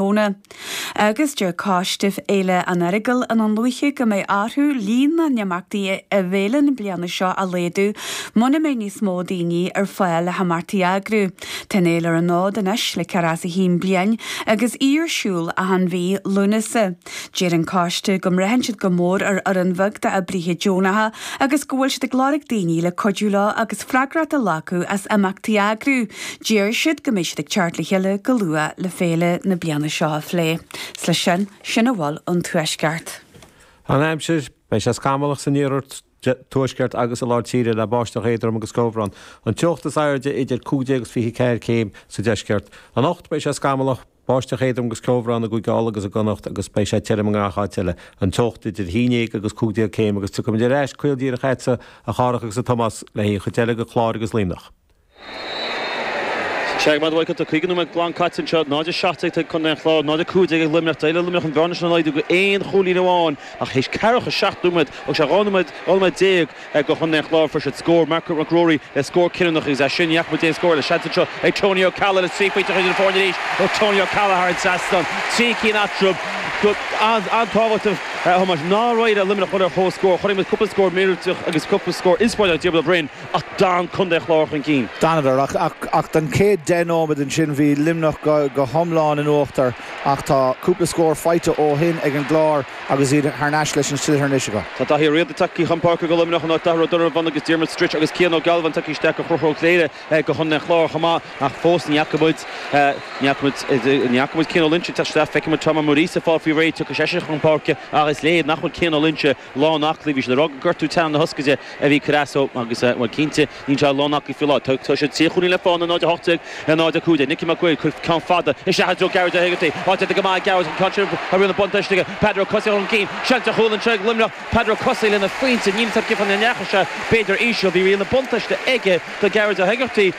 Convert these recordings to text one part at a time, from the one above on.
Mhóna. Agus deir coiste Fhéile an Earagail i nDún Lúiche go mbeidh orthu líon na n-imeachtaí i bhféile na bliana seo a laghdú muna mbeidh níos mó daoine ar fáil le himeachtaí a eagrú. Tá an fhéile ar an fhód anois le ceathracha is a haon bliain agus í ar siúl achan mhí Lúnasa. Deir an coiste go mbraitheann siad go mór ar fhoireann bheag d'oibríthe deonacha agus go bhfuil siad ag lorg daoine le cuidiú leo agus freagracht a ghlacadh as imeachtaí a eagrú. Deir siad go mbeidh siad ag teacht le chéile go luath le féile na bliana seo a phlé. Is leis sin sin a bhfuil ón Tuaisceart. An aimsir, Beidh sé scamallach san iarthar, tuaisceart agus i lár tíre le báisteach éadrom agus ceobhrán. An teocht is airde idir cúig déag agus 24 céim sa deisceart. Anocht beidh sé scamallach, báisteach éadrom agus ceobhrán i gCúige Uladh agus i gConnacht agus beidh sé tirim i ngach áit eile. An teocht idir haon dhéag agus cúig déag céim agus tiocfaimid ar ais caol díreach chugatsa a Chárthaigh agus a Thomáis le haghaidh an chuid eile de Chlár agus Luimneach. Sea go raibh maith agat 50 nóiméad glan caite anseo, 0-17 ag contae an Chláir, 0-15 ag Luimneach. D'éirigh le Luimneach an bhearna sin a laghdú go aon chúilín amháin ach thit 47 nóiméad agus sé 12 nóiméad ag contae an Chláir. Fuair siad scór, Marc Mac Ruairí le scór cinniúnach agus as sin ní fhaca muid aon scór eile. Seans anseo ag Tony Ó Ceallaigh le trí phointe a chur idir na foirne arís ó Tony Ó Ceallaigh thar an trasnán. Trí cinn eatarthu. Go an-tábhachtach a Thomáis nár éirigh le Luimneach dul ar comhscór. Chonaic muid cúpla scór míorúilteach agus cúpla scór inspioráideach ag Diarmaid Ó Broin. Ach d'fhan contae Chláir chun cinn. D'fhanadar, ach don chéad deich nóiméad. Ansin bhí Luimneach go hiomlán in uachtar ach tá cúpla scór faighte ó shin ag an gClár agus iad thar n-ais leis an sliotar anois acu. Tá Daithí Ó Riada tagtha chun páirce do Luimneach in áit Darragh Ó Donnabháin agus Diarmuid Stritch agus Cian Ó Gealbháin tagtha isteach do Chonchúr Ó Cléirigh do Chontae an Chláir chomh maith ach fós ní fhaca muid ní fhaca muid Cian Ó Loinsigh ag teacht isteach. Feicfidh muid Tom Ó Muiríosa ag fáil faoi réir, tiocfaidh seisean chun páirce ach is léir nach bhfuil Cian Ó Loinsigh lán aclaí. Bhí siad ag rá gur gortú teannán na hioscaide a bhí ag cur as dó agus, bhuel, cinnte, níl sé lán aclaí faoi láthair. Tá siad trí chúilín le fána, 0-18 le 0-15. Nicky Mac Uaid ag cur ceann fada isteach i dtreo Gearóid Ó hÉigeartaigh. Áit déanta go maith ag Gearóid, an ceann sin a bhfuil an buntáiste aige. Peadar Ó Cathasaigh chun cinn. Seans ar chúl anseo ag Luimneach. Peadar Ó Cathasaigh lena phointe. Ní thuigim cén fáth nach ndeachaigh sé, b'fhéidir íseal. Bhí riail an bhuntáiste aige tá Gearóid Ó hÉigeartaigh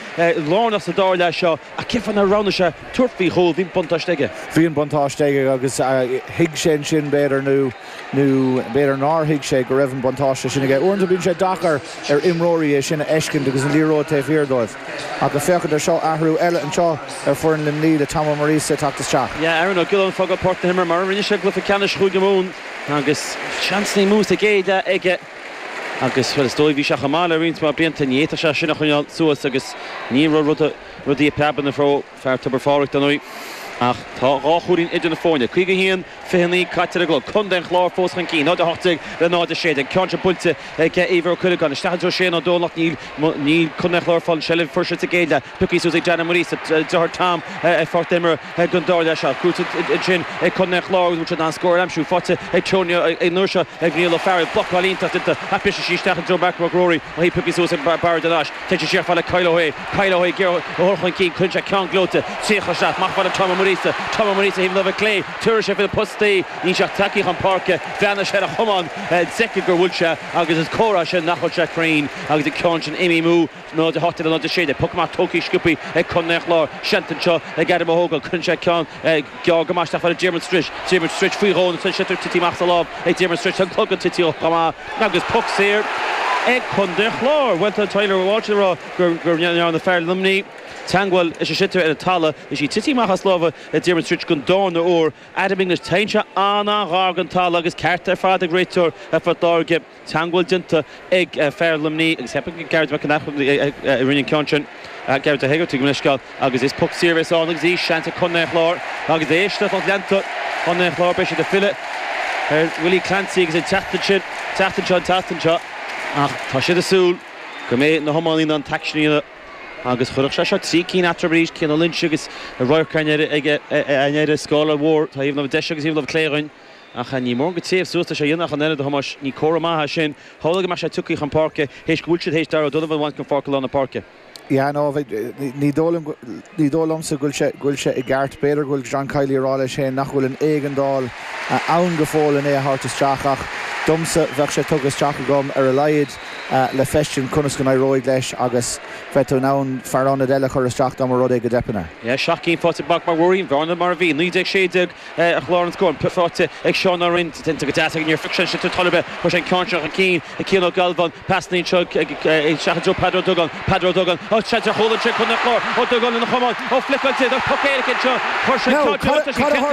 lárnach sa dara leath seo ach cé fáth nár roghnaigh sé tabhairt faoi chúl? Bhí an buntáiste aige. Bhí an buntáiste aige agus thuig sé ansin, b'fhéidir, nó. Nó b'fhéidir nár thuig sé go raibh an buntáiste sin aige. Uaireanta bíonn sé deacair ar imreoirí é sin a fheiscint agus an liathróid taobh thiar dóibh. Ach ag féachaint ar seo, athrú eile anseo ar foireann Luimnigh le Tom Ó Muiríosa ag teacht isteach. Yeah, Aaron Ó Giolláin ag fágáil pháirc na himeartha mar a rinne sé i gcluiche ceannais Chúige Mumhan agus seans nó dhó sa gcéad leath aige agus, bhuel, is dóigh bhí sé chomh maith le roinnt mhaith blianta, ní fhéadfadh sé sin a choinneáil suas agus ní raibh rudaí ag preabadh ina fhabhar. Fear Tobar Phádraig inniu ach tá dhá chúilín idir na foirne. 51, 29 caite ar an gclog. Contae an Chláir fós chun cinn, 0 18 le 0 16. Ceann seo buailte ag Éibhear Ó Cuileagáin. Isteach anseo Seán Ó Domhnaill ach níl Contae an Chláir ag fáil an tseilbh a fuair siad sa gcéad leath pioctha suas ag Dan Ó Muiríosa, deartháir Tom, ar pháirc na himeartha don dara leath seo. Cúiteamh ansin ag Contae an Chláir agus bhain siad an scór ar aimsiú. Faighte ag Tony an uair seo ag Niall Ó Fearghail. Blocáil iontach déanta ach briseann sí isteach i dtreo Mark Mac Ruairí. Mo shuí pioctha suas ag Barry de Nais. Tá sé ar fáil le haghaidh Kyle Ó hAodha. Kyle Ó hAodha ag iarraidh é a chur chun cinn. Cuireann sé ceann gleoite díreach isteach. Ar fáil ag Tom Ó Muiríosa. Tom Ó Muiríosa ó thaobh na láimhe clé. Tabharfaidh sé faoi na postaí. Níl sé ach tagtha chun páirce. Bhreathnaigh sé ar a chamán. D'fheicfeadh gur bhuail sé agus is comhartha é sin nach bhfuil sé cruinn. Agus an ceann sin imithe amú. 0-18 le 0-16. Poc amach tógtha go sciobtha ag Contae an Chláir. Seans anseo ag Adam Ó hÓgáin. Cuireann sé ceann. Gearr go maith isteach ar fáil ag Diarmuid Stritch. Diarmuid Stritch faoi dhó agus an sliotar tite amach as a lámh ag Diarmuid Stritch. An clogad tite chomh maith agus poc saor ag Contae an Chláir. Bhuel tá Tyler Walsh ag rá gur ndearna fear Luimnigh teagmháil leis an sliotar ar an talamh is í tite amach as a lámha ag Diarmuid Stritch don darna uair. Adam English, Téann sé an-an-ghar don talamh agus ceart ar fad ag réiteoir Phort Láirge. teagmháil déanta ag fear Luimnigh agus cheap mé Gearóid McEneff a rinne an ceann sin, Gearóid Ó hÉigeartaigh, gabh mo leithscéal, agus is poc saor a bheas ann agus beidh seans ag Contae an Chláir agus éist le lucht leanta Chontae an Chláir beidh siad ag filleadh ar Willie Clancy agus an tseachtain sin, an tseachtain seo, an tseachtain seo ach tá siad ag súil go mbeidh na hiománaí in ann an t-aicsean a dhéanamh agus chuirfeadh sé seo trí cinn eatarthu arís, Cian Ó Loingsigh agus Radharc an Earraigh ag an Earraigh, scóráil mhór, taobh na deise agus taobh na clé againn. Ach níl mórán téamh suas leis a dhéanamh ach an oiread, a Thomáis. Ní comhartha maith é sin. Shamhlaigh mé sé tiocfaidh chun páirce théis go bhfuil siad théis Darragh O'Donovan a bhaint den pháirc i lár na páirce. Yeah no ní dóigh liom ní dóigh liomsa go bhfuil sé i gceart. B'fhéidir go bhfuil John Kiely ag rá leis féin nach bhfuil an éigeandáil ann go fóill len é a thabhairt isteach ach domsa bheadh sé tugtha isteach agam ar a laghad le feiscint conas go n-éireoidh leis agus bheadh tú in ann fear ionaid eile a chur isteach dá mba rud é go dteipeann air. Yeah seacht gcinn faighte ag Mark Mac Ruairí, an bhearna mar a bhí 19 16. Ar chlár na scór, an poc faighte ag Seán Ó Rinn, déanta go deas aige, níor phioc sé sin sa talamh é, chuir sé an ceann seo chun cinn ag Cian Ó Gealbháin, pas líon seo isteach i dtreo Peadar Ó Dubhagáin, Peadar Ó Dubhagáin, áh, seans ar chúl anseo ag Contae an Chláir, Ó Dubhagáin lena chamán, ó blocáilte, ach poc éirice anseo, chuir sé an ceann sin laistiar, sin cheart.